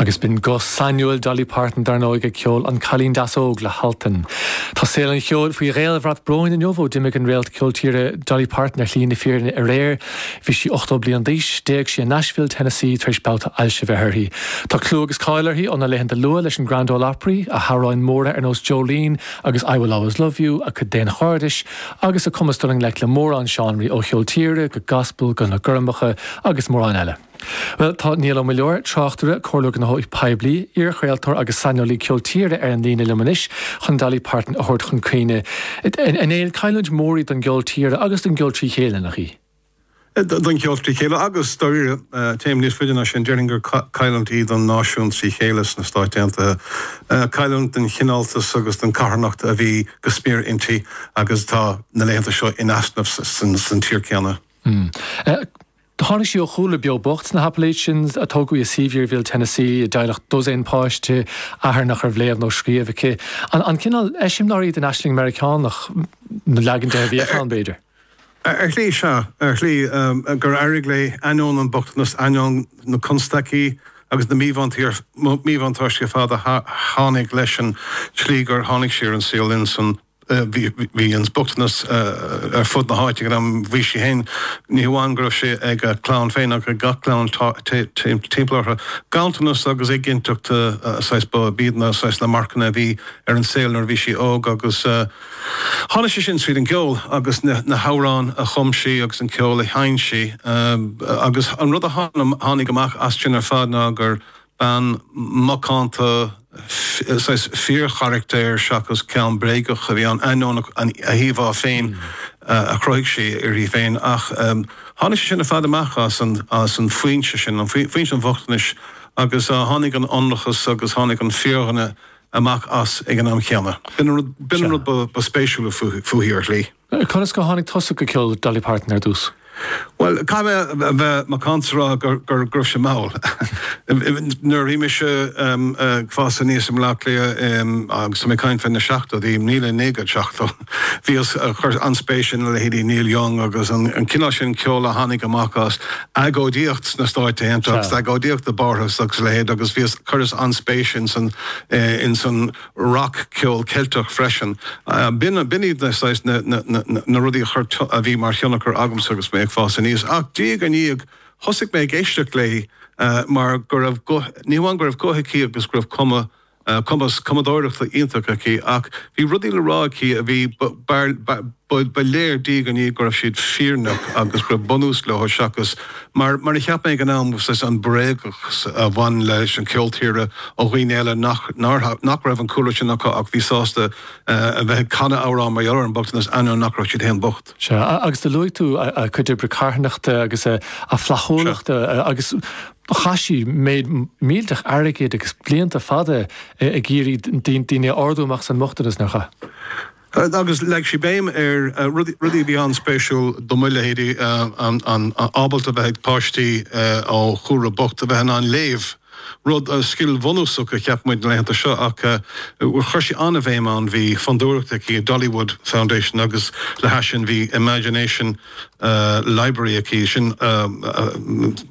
Agus b'in guth sainiúil Dolly Parton, dar ndóigh, ag ceol 'An Cailín Deas Óg' le hAltan. Tá saol an cheoil faoi dhaolbhrat bróin inniu ó d'imigh an réalt ceol tíre Dolly Parton ar shlí na fírinne aréir. Bhí sí 80 bliain d'aois. D'éag sí i Nashville, Tennessee tar éis babhta ailse bheith uirthi. Tá clú agus cáil uirthi óna laethanta luath leis an Grand Ole Opry, a hamhráin mhóra ar nós Jolene agus I Will Always Love You, a cuid daonchairdis, agus a cumas dul i ngleic le mórán seánraí ó cheol tíre go gaspal go na gormacha agus mórán eile. Bhuel, tá Niall Ó Muilleoir, tráchtaire, comhairleoir gnóthaí poiblí, iarchraoltóir agus saineolaí ceol tíre ar an líne liom anois chun Dolly Parton a thabhairt chun cuimhne. A Néill, an-chailliúint mhór í don gceol tíre agus don gceol trí chéile, nach í? don cheol trí chéile agus, dáiríre, téim níos faide ná sin, déarfainn gur cailliúint í don náisiún trí chéile sna Stáit Aontaithe, cailliúint don chineáltas agus don charthanacht a bhí go smior inti agus atá, na laethanta seo, in easnamh san tír céanna. Tháinig sí ó chúlra beo bocht sna hAppalachians, tógadh i Sevierville, Tennessee, i dteaghlach dosaen páiste, athair nach raibh léamh nó scríobh aige, cineál eiseamláir í den aisling Meiriceánach, nó leagan de a bhíodh ann, b'fhéidir. Ar shlí, sea, ar shlí, gur éirigh léi, ainneoin an bhochtanas, ainneoin na constaicí agus na míbhuntáistí ar fad a tháinig leis an tslí gur tháinig sí ar an saol linn san. Bhí an bochtanas ar fud na háite ag an am. Bhí sí féin, ní hamháin go raibh sé ag a clann féin ach ag gach clann timpeall orthu. Ganntanas agus éiginnteacht, saghas, b'iad na, saghas, na marcanna a bhí ar an saol nuair a bhí sí óg agus, Tháinig sé sin tríd an gceol agus na hamhráin a chum sí agus an ceol a sheinn sí. Agus an rud a tháinig amach as sin ar fad ná gur bean mhacánta, saghas fíorcharactair seachas ceann bréagach a bhí ann, ainneoin a híomhá féin a chruthaigh sí uirthi féin. Ach tháinig sé sin ar fad amach as an foinse sin, foinse an bhochtanais, agus tháinig an ionracas agus tháinig an fíordhuine amach as ag an am chéanna. B'in an rud ba spéisiúla fúithi, ar shlí. Conas gur tháinig tusa go ceol Dolly Parton ar dtús? Bhuel, caithfidh mé a bheith macánta is a rá go raibh sé mall. Nuair a bhí mise ag fás aníos i mBleá Cliath, agus tá mé ag caint fé na seachtóidí, míle naoi gcéad seachtó. Bhíos ag cur an-spéise ina leithéidí Neil Young agus an cineál sin ceoil a tháinig amach as agóidíocht sna Stáit Aontaithe agus agóidíocht i bPáras agus a leithéid agus bhíos, chuireas an-spéis ins an rock ceol Ceilteach freisin. B'in iad na saghas na rudaí a bhí mar thionchar agamsa agus mé ag fás aníos. Ach diaidh ar ndiaidh thosaigh mé ag éisteacht léi mar go raibh, ní hamháin go raibh guth aici agus go raibh cuma, cumas cumadóireachta iontach aici ach bhí rudaí le rá aici a bhí, ba léir diaidh ar ndiaidh go raibh siad fírinneach agus go raibh bunús leo seachas mar a cheap mé ag an am, an bréagachas a bhain leis an cheol tíre ó dhaoine eile nach raibh an cúlra sin acu ach bhí sásta a bheith ag canadh amhrán mar gheall ar an mbochtanas ainneoin nach raibh siad féin bocht. Sea, agus do luaigh tú a cuid oibre carthanachta agus a flaithiúlachta agus Chaith sí méid millteach airgid agus blianta fada ag iarraidh daoine a ardú amach as an mbochtanas, nár chaith? Agus leag sí béim ar rudaí a bhí an-spéisiúil do mo leithéidí, an ábaltacht a bheith ag páistí ó chúlra bocht a bheith in ann léamh, rud, scil bhunúsach a cheap muid na laethanta seo ach chuir sí an-bhéim air. Bhí fondúireacht aici, Dollywood Foundation, agus le hais sin bhí Imagination, Library aici. Sin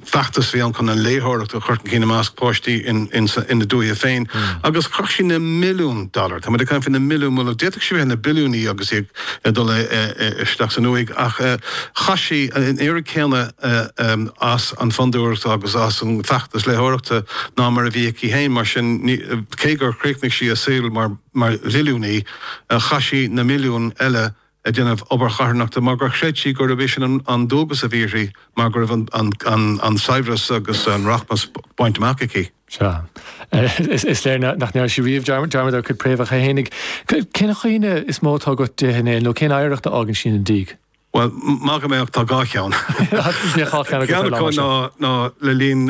feachtas a bhí ann chun an léitheoireacht a chur chun cinn i measc páistí ina dúiche féin agus chaith sí na milliúin dollar, tá muid ag caint faoi na milliúin milliún, d'fhéadfadh sí a bheith ina billiúnaí agus í ag dul isteach san uaigh ach chaith sí an oiread céanna ar an bhFondúireacht agus ar an bhfeachtas léitheoireachta ná mar a bhí aici féin. Mar sin, cé gur chríochnaigh sí a saol mar mhilliúnaí, chaith sí na milliúin eile ag déanamh obair charthanachta mar gur chreid sí gurb é sin an dualgas a bhí uirthi mar go raibh an saibhreas agus an rachmas bainte amach aici. Sea. Is léir nach ndearna sí riamh dearmad ar a cuid préamhacha fhéinig. Cén chuimhne is mó atá agat di féin nó cén oidhreacht a fhágann sí ina diaidh? Bhuel, maith go mbeadh, tá dhá cheann. Ceann acu ná le linn